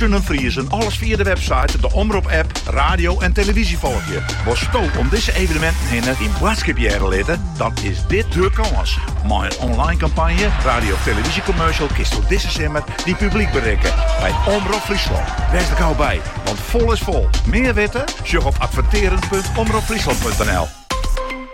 Kinne Friezen alles fia de website, de Omrop-app, radio en televyzje folgje. Wolsto om dizze evenementen hinne dyn boadskip hearre litte? Dan is dit de kâns. Mei in online kampanje, radio of televyzjecommercial kinst do dizze simmer dyn publyk berikke by Omrop Fryslân. Wês der gau by, want fol is fol. Mear witte? Sjoch op adverteren.omropfryslan.nl.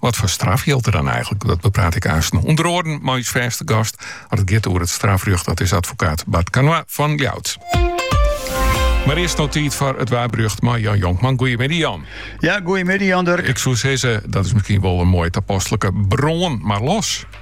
Wat foar straf jildt der dan eigentlik? Dat bepraat ik aansten ûnder oaren mei ús fêste gast as it giet oer it strafrjocht. Dat is advokaat Bart Canoy fan Ljouwert. Mar earst no tiid foar it waarberjocht mei Jan Jonkman. Goeiemiddei Jan. Ja, goeiemiddei Jan Durk. Ik soe sizze, dat is miskien wol in moai tapaslik. Brân mar los.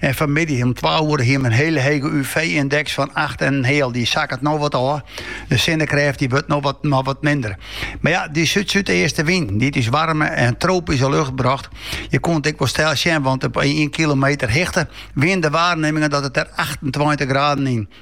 En fanmiddei om twa oere hiene we in hiele hege UV-yndeks fan acht en in heal. Dy sakket no wat ôf. De sinnekrêft dy wurdt no wat, no wat minder. Mar ja, dy súd-súdeaste wyn, dy't ús waarme en tropyske lucht brocht, je koene it ek wol steld sjen, want op ien kilometer hichte wienen de waarnimingen dat it der achtentweintich graden yn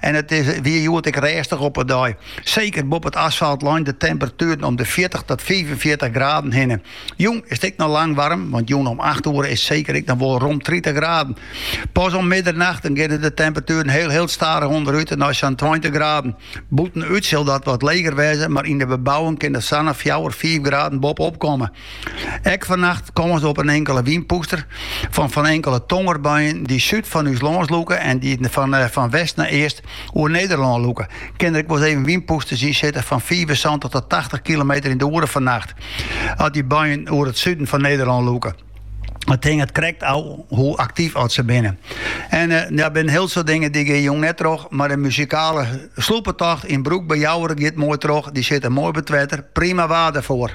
En it is, wie hjoed ek rêstich op 'e dyk. Seker boppe it asfalt lein de temperatueren om de fjirtich tot fiifenfjirtich graden hinne. Jûn is it ek noch lang waarm, want jûn om acht oere is seker ek noch wol rom tritich graden. Pas om middernacht dan geane de temperatueren hiel hiel stadich ûnderút en nei sa'n tweintich graden. Bûtenút sil dat wat leger wêze, mar yn de bebouwing kin der sa'n fjouwer, fiif graden boppe op komme. Ek fannacht kâns op in inkele wynpûster fan fan inkele tongerbuien dy't súd fan ús lâns lûke en dy't fan, eh, fan west nei east oer Nederlân lûke. Kin der ek wolris even wynpûsters yn sitte fan fiifensantich oant tachtich kilometer yn de oere fannacht, as dy buien oer it suden fan Nederlân lûke. It hinget krekt ôf hoe aktyf as se binne. En eh, ja, der binne hiel soad dingen dy geane jûn net troch, mar de muzikale sloepetocht yn Broek by Jouwer giet moai troch. Dy sitte moai by it wetter, prima waar derfoar.